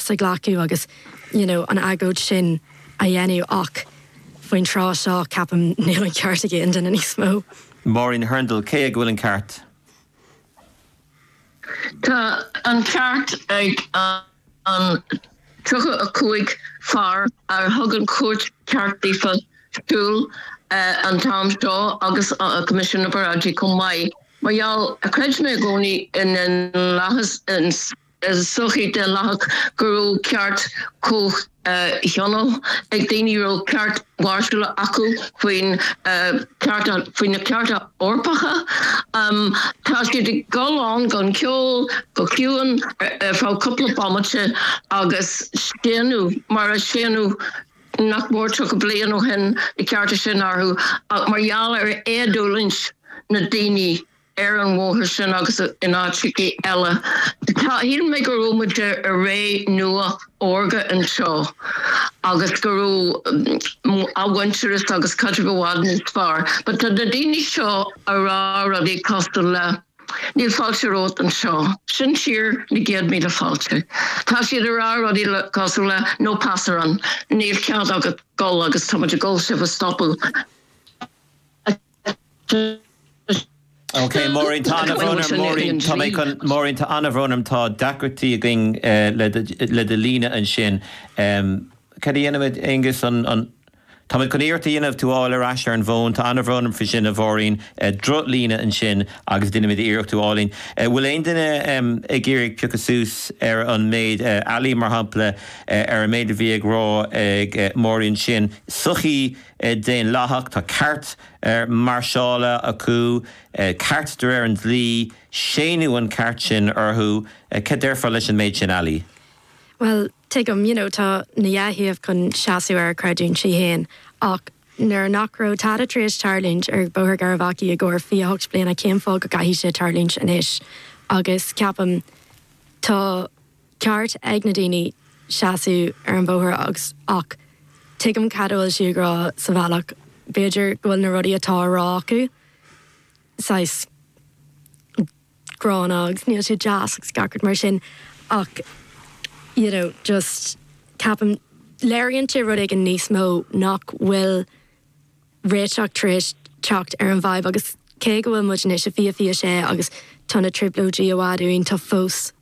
sa ghlacadh agus you know an agóid sin a dhéanamh ach faoin tráth seo, ceapaim, níl an ceart ag aon duine níos mó. Máirín Hurndall, Cé ag a bhfuil an ceart? Tá an ceart ag an 35 fear a thug an chúirt ceart daofa siúl an t-am seo agus Coimisiún na bParáidí chomh maith mar gheall, chreid mé i gcónaí, i ndaonlathas, i sochaí daonlathach go raibh ceart comhthionóil ag daoine, raibh ceart máirseála acu faoin cheart, faoi na cearta Eorpacha. Tá siad ag gol ann gan ceol, go ciúin, ar feadh cúpla bomaite agus séanadh, mar a séanadh nach mór 30 bliain ó shin, na cearta sin orthu ach mar gheall ar éadulaingt na ndaoine. ar an mbóthar sin agus in áiteachaí eile. Shíl mé go raibh muid i ré nua órga anseo agus go raibh athmhuintearas agus caidreamh i bhfad níos fearr but tá na daoine seo a' rá rudaí cosúil le Níl fáilte romhat anseo, sin tír na gcéad míle fáilte. Tá siad a' rá rudaí le, cosúil le No pasarán, níl cead agat a gol agus tá muid a' gol sibh a stopadh. Ok, Máirín, tá an-bhrón orm, Máirín, tá mé chun, Máirín, tá an-bhrón orm, tá deacrachtaí againn le do líne ansin. Cad a dhéanfaimid, Aengus, an, an, tá mé chun iarracht a dhéanamh tú a fháil ar ais ar an bhfón, tá an-bhrón orm faoi sin, a Mháirín, droch-líne ansin agus déanfaimid iarracht tú a fháil linn. An bhfuil aon duine ag iarraidh piocadh suas ar an méid, Ali, mar shampla, ar an méid a bhí ag rá ag Máirín ansin, sochaí, daonlathach, tá ceart mairseála acu, ceart de réir an dlí, séanadh an ceart sin orthu. Cad déarfá leis an méid sin, Ali? Bhuel, tuigim, you know, tá na dhá thaobh chun seasamh ar a gcreidiúintí féin ach nuair nach raibh tada tar éis tarlúint ar Bhóthar Garvaghy i gcomhair 28 bliana cén fáth go gcaithfidh sé tarlúint anois agus ceapaim tá ceart ag na daoine seasamh ar an bhóthar agus, ach tuigim cad a bhfuil sí ag rá sa bhealach, b'fhéidir go bhfuil na rudaí atá á rá acu saghas gránna agus níl sé deas agus gach rud mar sin ach you know just ceapaim léiríonn sé rud éigin níos mó nach bhfuil réiteach tar éis teacht ar an bhfadhb agus cé go bhfuil muid anois i 2026 agus tá na trioblóidí i bhfad uainn tá fós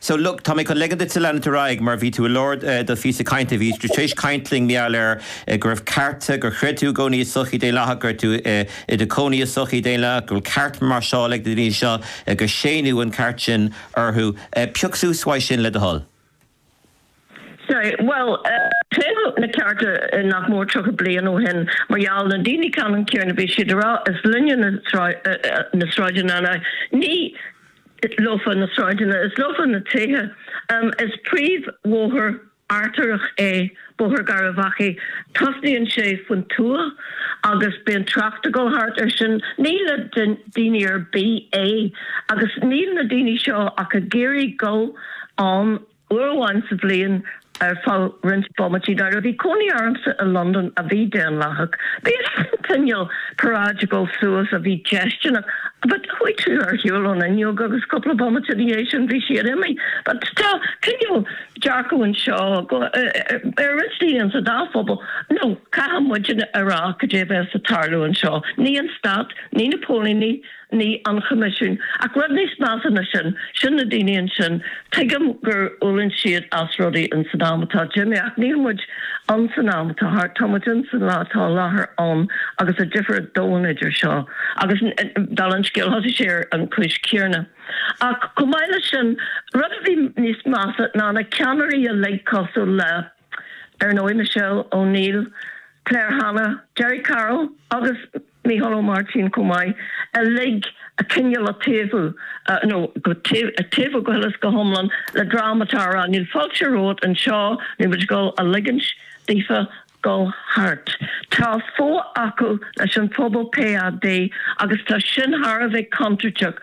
So, look, tá mé chun ligean duit-sa leanúint ar aghaidh mar bhí tú i lár do phíosa cainte, bhí tú tar éis caint linn, mar gheall air, go raibh cearta, gur chreid tú i gcónaí i sochaí daonlathach, go raibh tú i do chónaí i sochaí daonlathach, go bhfuil cearta mairseála ag na daoine seo, gur séanadh an ceart sin orthu. Pioc suas uaidh sin le do thoil. Sea, bhuel, cé na cearta nach mór 30 bliain ó shin mar gheall na daoine ceannann céarna bhí siad a rá, is linne na sráideanna ná ní leofa na sráideanna, is leofa na tithe. Is príomhbhóthar artaireach é Bóthar Gharbhachaidh, tosnaíonn sé faoin tuath agus bíonn trácht a dhul thart air sin. Ní le daoine ar bith é agus níl na daoine seo ach ag iarraidh dhul ann. Uair amháin sa bhliain, ar feadh roinnt bomaití, nuair a bhí cónaí ormsa i Londain a bhí daonlathach, bhíodh cineál paráide ag gabháil suas a bhí déistineach, but chuaigh tú ar shiúl ón fhuinneog agus cúpla bomaite ina dhiaidh sin bhí siad imithe, but tá cineál dearcadh anseo ar roinnt daoine insa dá phobal, nó caithfidh muidinne a rá cad é a bheas ag tarlú anseo, ní an stát, ní na póilíní, Ní an Choimisiún. Ach rud níos measa ná sin, sin na daoine ansin. Tuigim gur fhulaing siad as rudaí in san am atá imithe, ach níl muid in san am atá thart, tá muid in san lá atá i láthair ann agus tá difear domhain idir seo agus, dála an scéil, thosaigh sé ar an chúis chéanna. Ach chomh maith leis sin, rud a bhí níos measa ná na ceannairí uilig cosúil le, ar ndóigh, Michelle O'Neill, Claire Hanna, Gerry Carroll agus, Mícheál Ó Máirtín chomh maith, uilig cineál ag taobhú, nó ag taobhú go huile is go hiomlán, le dream atá á rá, níl fáilte romhat anseo, níl muid ag dul a ligint daofa dul thart. Tá fuath acu leis an phobal PAD, agus tá sin thar a bheith contúirteach.